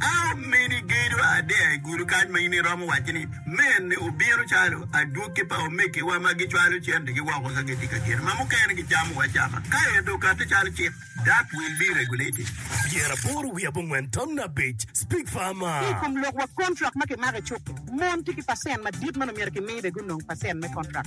An meni gedo adea i gudo kany ma in iromo wacci ni, 'Mene obino calo adwogi pa omegiwa ma gicwalo cendigi woko ka gitye ka geno ma mukene gicamo acama, ka ento okatti calo cik, dok wil bi regulating. Pyera aboro wiye abongwen tamna abic, Speak farmer. Ki i kom lok wa kontrak ma kimako i cuk-ki, mon tye ki pacent madit ma nongo myero kimi bene gunong pacent me kontrak.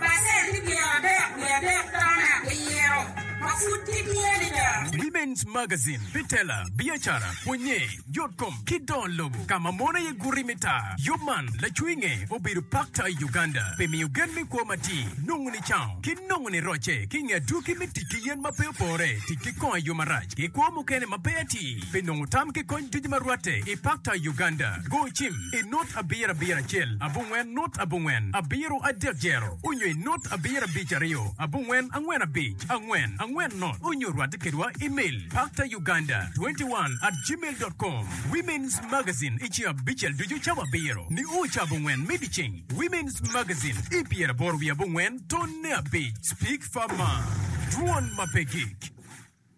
Pacenti pyer adek wiye adek tone abiro ma pud gitye adada. Women's Magazine, Bitela, Biacara, Pwonye, Yotkom, ki Don Lobo, ka ma mon aye guti me tar. Yub man, lacwinge obedo pakta i Uganda pi miyo gen me kwo matir, nongo nicaung, ki nongo nirocce ki i nge adwogi me tic ki yen ma pe opore, tic ki kongo i yo marac, ki kwo mukene ma pe atir. Pi nongo tam ki kony ducu ma rwatte i Pakta, Uganda, go cim i nut abiro abiro acel abongwen nut abongwen abiro adek zero onyo i nut abiro abic aryo abongwen angwen abic angwen angwen nut onyo rwatte kedwa imel paktauganda 21 at gmail dot com Women's Magazine i ceng abicel ducu cawa abiro nio ca abongwen me dyeceng Women's Magazine i pyeraboro wiye abongwen tonne abic Speak Far Mar Dwon ma pe gik.